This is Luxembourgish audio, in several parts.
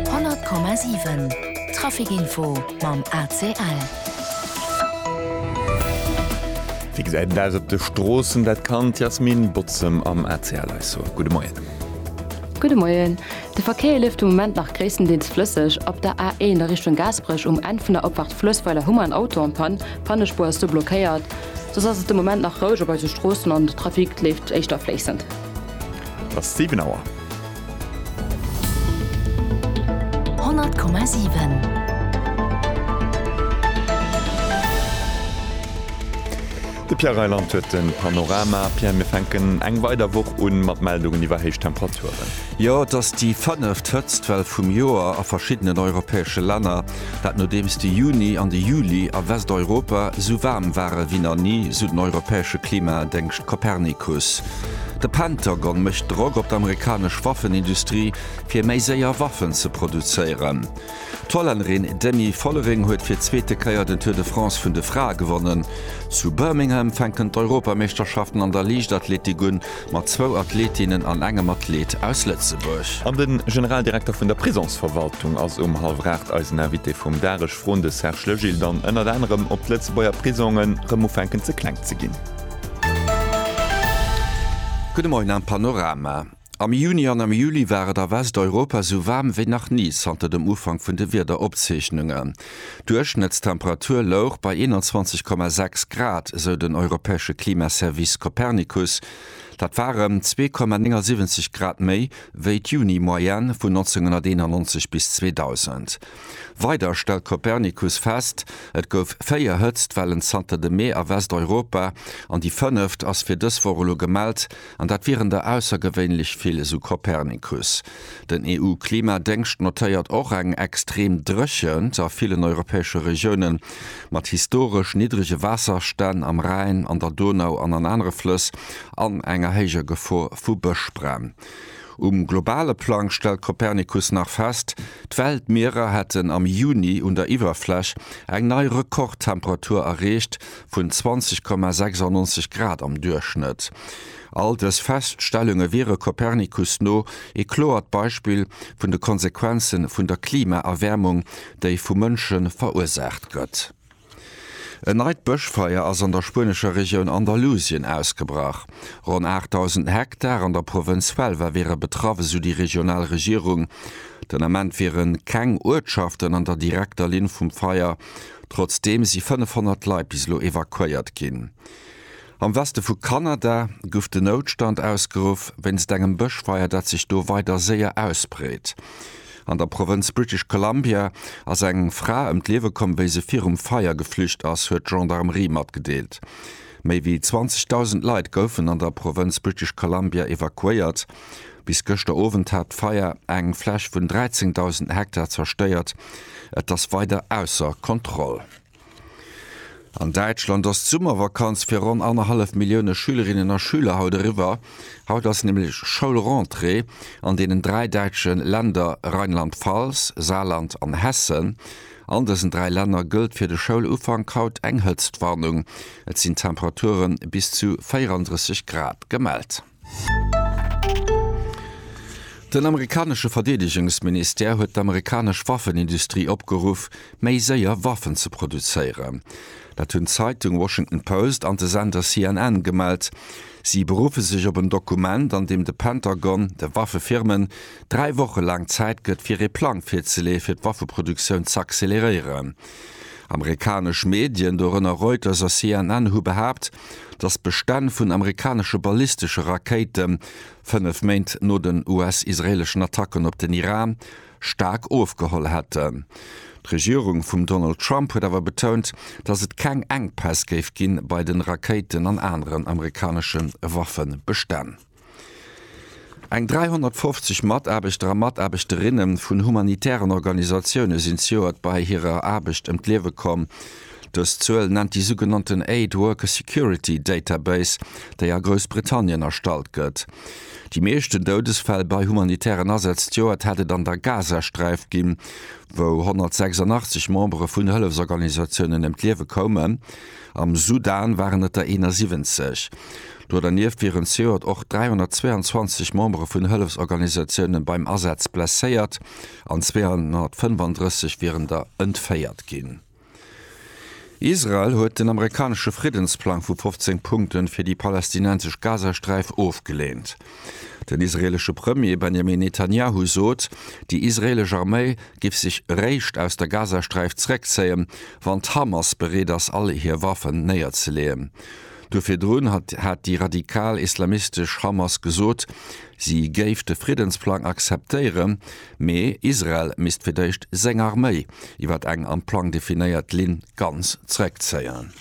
100,7 Trafic Info mam ACL. Wéi gesäit et aus op de Stroossen? Dat kann d'Yasmine Bozem am ACL eis soen. Gudde Moien. Gudde Moien. De Verkéier leeft de Moment nach gréisstendeels flësseg. Op der A1 a Richtung Gaasperech um Enn vun der Opfahrt Fluessweiler hu mer en Auto an Panne. Pannespuer ass do blockéiert. Soss ass et de Moment nach roueg op eise Stroossen an de Trafic leeft éischter fléissend. Et ass 7 Auer. De Pierre Reyland huet de Panorama. Pierre, mir fänken eng weider Woch un mat Meldungen iwwer héich Temperaturen. Jo, et ass déi fënneft Hëtztwell vum Joer a verschiddenen europäesche Länner. Dat nodeems de Juni an de Juli a Westeuropa sou waarm ware wéi nach ni, sou den europäesche Klimadéngscht Copernicus. De Pentagon mécht Drock op d'amerikanesch Waffenindustrie, fir méi séier Waffen ze produzéieren. D'Hollännerin Demi Vollering huet fir d'zweete Kéier den Tour de France vun de Frae gewonnen. Zu Birmingham fänken d'Europameeschterschaften an der Liichtathletik un. mat zwou Athletinnen an engem Athlet aus Lëtzebuerg. An de Generaldirekter vun der Prisonsverwaltung ass um hallwer 8 eisen Invité vum Dag. Ech froen de Serge Legil dann ënnert anerem, ob d'Lëtzebuerger Prisonge rëm ufänken ze kleng ze ginn. Gudde Moien am Panorama. Am Juni an am Juli war et a Westeuropa esou waarm wéi nach ni zanter dem Ufank vun de Wiederopzeechnungen. D'Duerchschnëttstemperatur louch bei 21,6 Grad, esou den europäesche Klimaservice Copernicus. Dat war ëm 2,79 Grad méi wéi d'Juni-Moyenne vun 1991 bis 2000. Weider stellt Copernicus fest, Et gouf véier Hëtztwellen zanter dem Mee a Westeuropa an déi fënneft ass fir dës Woch elo gemellt. An dat wieren der aussergewéinlech vill, esou Copernicus. Den EU-Klimadéngscht notéiert och eng extrem Dréchent a villen europäesche Regiounen, mat historesch niddrege Waasserstänn am Rhäin, an der Donau an an anere Flëss, an enger héijer Gefor vu Bëschbränn. Um globale Plang stellt Copernicus nach fest, d'Weltmierer hätten am Juni un der Iwwerfläch eng nei Rekordtemperatur erreecht, vun 20,96 Grad am Duerchschnëtt. All dës Feststellunge wiere Copernicus no ee kloert Beispill vun de Konsequenze vun der Klimaerwäermung, déi vu Mënsche verursaacht gëtt. En neit Bëschfeier ass an der spuenescher Regioun Andalusien ausgebrach. Ronn 8.000 Hektar an der Provënz Huelva wiere betraff, esou déi regional Regierung. Den Ament wiere keng Uertschaften an der direkter Linn vum Feier, Trotzdeem si 500 Leit bis elo evakuéiert ginn. Am Weste vu Kanada guff de Noutstand ausgeruff wéinst engem Bëschfeier, dat sech do weider séier ausbreet. An der Provënz British Columbia ass eng Fra ëm d'Liewe komm, wéi se virum Feier geflücht ass, huet d'Gendarmerie matgedeelt. Méi wéi 20.000 Leit goufen an der Provënz British Columbia evakuéiert. Bis gëschter Owend hat d'Feier eng Fläch vun 13.000 Hektar zerstéiert. Et ass weider ausser Kontroll. An Däitschland ass d'Summervakanz fir ronn annerhallef Millioune Schülerinnen a Schüler haut eriwwer. Haut ass nämlech Schoulrentrée an deenen dräi däitsche Länder Rheinland-Pfalz, Saarland an Hessen. An dësen dräi Länner gëllt fir de Schoulufank haut eng Hëtztwarnung. Et sinn Temperature bis zu 34 Grad gemellt. Den amerikanesche Verdeedegungsministère huet d'amerikanesch Waffenindustrie opgeruff, méi séier Waffen ze produzéieren. Dat hunn d'Zeitung Washington Post an de Sender CNN gemellt. Si beruffe sech op en Dokument, an deem de Pentagon de Waffefirmen dräi Woche laang Zäit gëtt, fir ee Plang virzeleeë fir d'Waffeproduktioun z'acceleréieren. Amerikanesch Medien, dorënner Reuters a CNN, hu behaapt, datt d'Bestänn vun amerikanesche ballistesche Rakéite fënnef Méint no den US-israeeleschen Attacken op den Iran staark ofgeholl hätten. D'Regierung vum Donald Trump huet awer betount, datt et keng Enkpäss géif gi bei de Rakéiten an aneren amerikanesche Waffebestänn. Eng 350 Mataarbechter a Mataarbechterinnen vun humanitären Organisatioune sinn zejoert bei hirer Aarbecht ëm d'Liewe komm. Dës Zuel nennt déi sougenannten Aid Worker Security Database, déi a Groussbritannien erstallt gëtt. Déi meeschten Doudesfäll bei humanitären Asätz d'Joert hätt et an der Gazasträif ginn, wou 186 Membere vun Hëllefsorganisatiounen ëm d'Liewe koumen. Am Sudan waren et der 71. Do dernieft wieren zejoert och 322 Membere vun Hëllefsorganisatiounen beim Asaz blesséiert an 235 wieren der entféiert ginn. Israel huet den amerikanesche Friddensplang vu 15 Punkte fir déi palästinensesch Gazasträif ofgeleent. Den israeelesche Premier Benjamin Netanjahu sot, déi israeelesch Arméi géif sech eréischt aus der Gazasträif zeréckzéien, wann d'Hamas bereet ass all hir Waffen néierzeleeën. Duer virdrun hat déi radikal islamistesch Hamas gesot, si géif de Friddensplang akzeptéieren, mee Israel misst fir d'éischt seng Arméi iwwer eng am Plang definéiert Linn ganz zeréckzéien.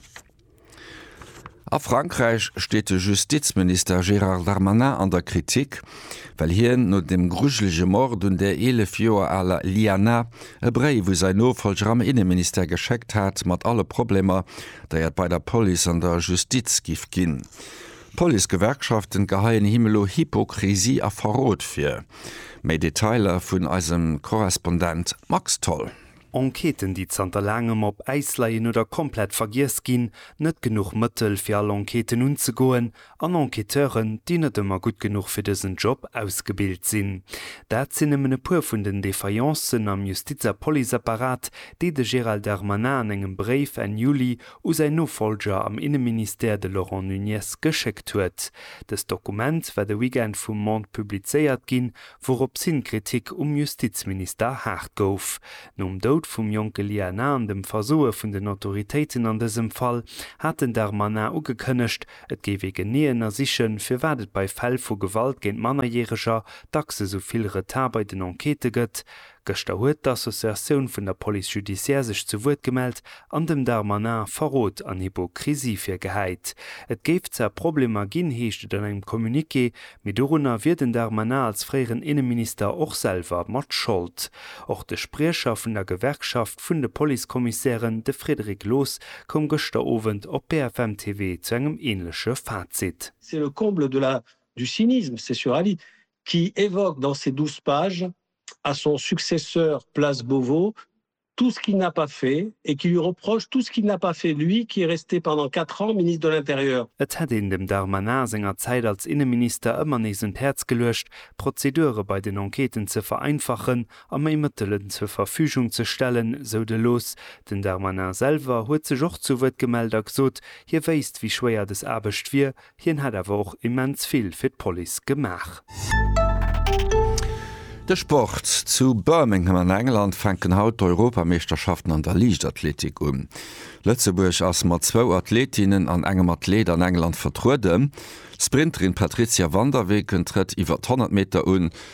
A Frankräich steet de Justizminister Gérard Darmanin an der Kritik, well hien no dem grujelege Mord un der 11 Joer aler Liana e Bréif u säin Nofollger am Inneministère geschéckt hat, mat alle Problemer, déi et bei der Police an der Justiz giff ginn. D'Policegewerkschaften geheien him elo Hypokrisie a Verrot vir. Méi Detailer vun eisem Korrespondent Max Tholl. Enquêten déi zanter laangem op Äis leien oder komplett vergiess ginn, net genuch Mëttel fir all Enquêten unzegoen an Enquêteuren déi net ëmmer gutt genuch fir dësen Job ausgebilt sinn. Dat sinn nëmmen e puer vun den Défaillencen am Justiz a Policeapparat, déi de Gérald Darmanin an engem Bréif Enn Juli u säin Nofollger am Inneministère, de Laurent Nunez, geschéckt huet. Dëst Dokument war de Weekend vum Monde publizéiert ginn, Wouropshin d'Kritik um Justizminister haart gouf. Nom Doud vum jonke Lia Na an dem Versoe vun den Autoritéiten an dësem Fall, hat den Darmanin ugekënnegt, et géif ee genee ënnersichen, firwat et bei Fäll vu Gewalt géint Mannerjäreger dacks esou vill Retard bei den Enquêtë gëtt, Gëschter huet d'Associatioun vun der Police judiciaire sech zu Wuert gemellt an dem Darmanin Verrot an Hypokrisie virgehäit. Et géif zwar Problemer ginn, heescht et an engem Communiqué, mee dorunner wier den Darmanin als fréieren Inneminister och selwer mat Schold. Och de Spriecher vun der Gewerkschaft vun de Policekommissären, de Frédéric Loos, koum gëschter Owend op BFM TV zu engem änleche Fazit. C'est le comble de la du cynisme, c'est sur Ali qui évoque dans ses 12 pages à son successeur place Beauvau tout ce qu'il n'a pas fait et qui lui reproche tout ce qu'il n'a pas fait, lui qui est resté pendant quatre ans Ministre de l'Intérieur. Et hätt een dem Darmanin senger Zäit als Inneminister ëmmer nees un d'Häerz geluecht, d'Prozedure bei den Enquêten ze vereinfachen a méi Mëttelen zur Verfügung ze stellen, sou de Loos. Den Darmanin selwer huet sech och zu Wuert gemellt a gesot, hie wéisst, wéi schwéier des Aarbecht wier, Hien hat awer och immens vill fir d'Police gemaach. De Sport, Zu Birmingham an England fänken haut d'Europameeschterschaften an der Liichtathletik un. Lëtzebuerg ass mat zwou Athletinnen an engem Athlet an England vertrueden. D'Sprinterin Patrizia van der Weken trëtt iwwer d'Honnertmeter un.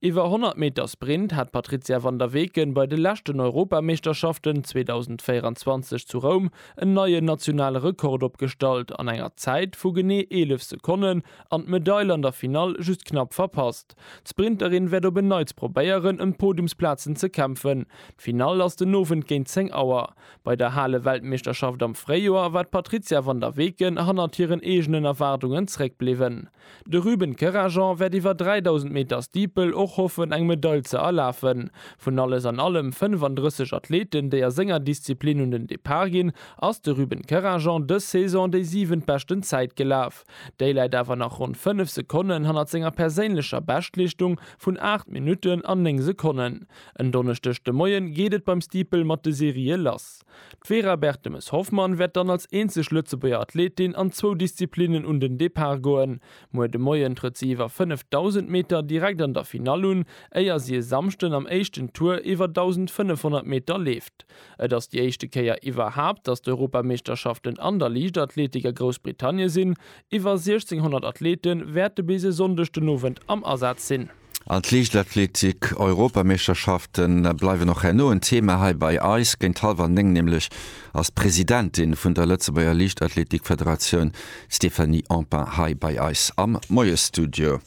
Iwwer 100 Meter Sprint hat d'Patrizia van der Weken bei de leschten Europameeschterschaften 2024 zu Roum en neien nationale Rekord opgestallt an enger Zäit vu genee 11 Sekonnen an d'Medail an der Finall just knapp verpasst. D'Sprinterin wäert op en Neits probéieren ëm d'Podiumsplazen ze kämpfen. D'Finall ass den Owend géint 10 Auer. Bei der Hale-Weltmeeschterschaft am Fréijoer war d'Patrizia van der Weken hannert hiren eegenen Erwaardungen zréckbliwwen. De Ruben Kerajan wäert iwwer 3.000 Meter Steeple och hoffen eng Medail ze erlafen. Vun alles an allem 35 Athleten déi a senger Disziplin un den Depart ginn, ass de Ruben Kerajan dës Saison déi siwent beschten Zäit gelaf. Déi läit awer nach ronn 5 Sekonnen hannert senger perséinlecher Beschtleeschtung vun 8 Minutten an 9 Sekonnen. En Donneschdeg de Moien geet et beim Steeple mat de Serië lass. D'Vera Bertemes-Hoffmann wäert dann als eenzeg Lëtzebuerger Athletin an zwou Disziplinnen un den Depart goen. Muer de Moien trëtt si iwwer 5.000 Meter direkt an der Finall un, éier si e Samschden am éischten Tour iwwer 1.500 Meter leeft. Et ass déi éischte Kéier iwwerhaapt, datt d'Europameeschterschaften an der Liichtathletik a Groussbritannie sinn. Iwwer 1.600 Athlete wäerte bis e Sonndeg den Owend am Asaz sinn. An d'Liichtathletik Europameeschterschafte bleiwen och herno en Thema hei bei eis. Géint hallwer 9 nämlech ass d'Presidentin vun der Lëtzebuerger Liichtathletikfederatioun Stéphanie Empain hei bei eis am Moiesstudio.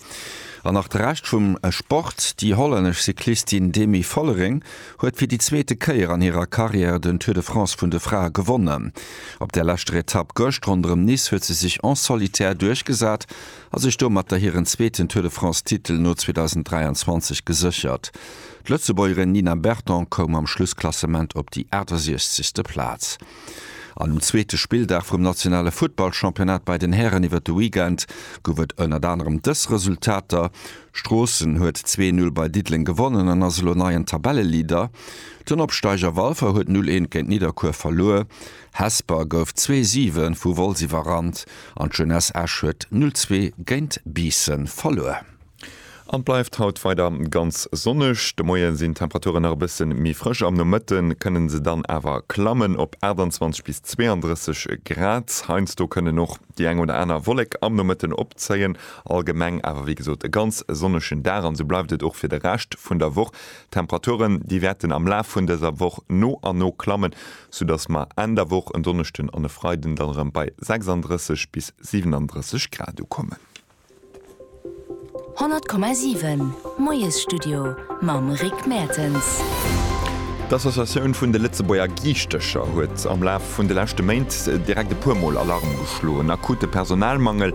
An nach de Rescht vum Sport, Déi hollännesch Cyclistin Demi Vollering huet fir déi zweete Kéier an hirer Karriär den Tour de France vun de Frae gewonnen. Op der leschter Etapp gëscht ronderëm Nice huet se sech en solitaire duerchgesat a sech domatter hiren zweeten Tour de France-Titel no 2023 geséchert. D'Lëtzebuergerin Nina Berton koum am Schlussklassement op déi 68. Plaz. An um zweete Spilldag vum nationale Futtballchampionnat bei den Hären iwwert de Weekend gouf et ënnert anerem dës Resultater, Stroossen huet 2-Null bei Diddeleng gewonnen an ass elo neien Tabelleleader, den Opsteiger Walfer huet 0-1 géint Nidderkuer verluer. Hesper gouf zwee Siwen vu Wolz iwwerrannt an d'Jeunesse Esch huet 0 zwee géint Biissen verluer. An et bleift haut weider ganz sonneg. De Moie sinn d'Temperaturen nach e bësse méi frësch, am Nomëtte kënne se dann awer klammen op 28 bis 32 Grad. Heiansdo kënnen och déi eng oder aner Wollek am Nomëtten opzéien. Allgemeng awer wéi gesot e ganz sonnegen Dag an esou bleift et och fir de Rescht vun der Woch. D'Temperaturen, déi wäerten am Laf vun dëser Woch no a no klammen, soudass mer Enn der Woch, en Donneschden an e Freiden, dann erëm bei 36 bis 37 Grad ukommen. 100,7 Moiesstudio mam Rick Mertens. D'Associatioun vun de Lëtzebuerger Giischtecher huet am Laf vun de leschte Méint direkt e puer Mol Alarm geschloen. Akute Personalmangel,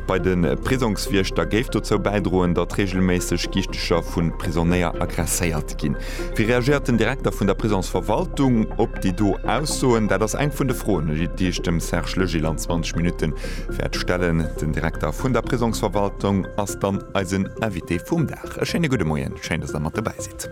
bei de Prisongswiechter géif dozou bäidroen, datt reegelméisseg Gichtecher vu Prisonnéier agresséiert ginn. Wéi reagéiert den Direkter vun der Prisonsverwaltung op déi do Aussoen? Dat ass eng vun de Froen, déi ech dem Serge Legil an 20 Minutte wäert stellen. Den Direkter vun der Prisonsverwaltung ass dann eisen Invité vum Dag. E schéine gudde Moien, schéin, datt Der mat dobäi sidd.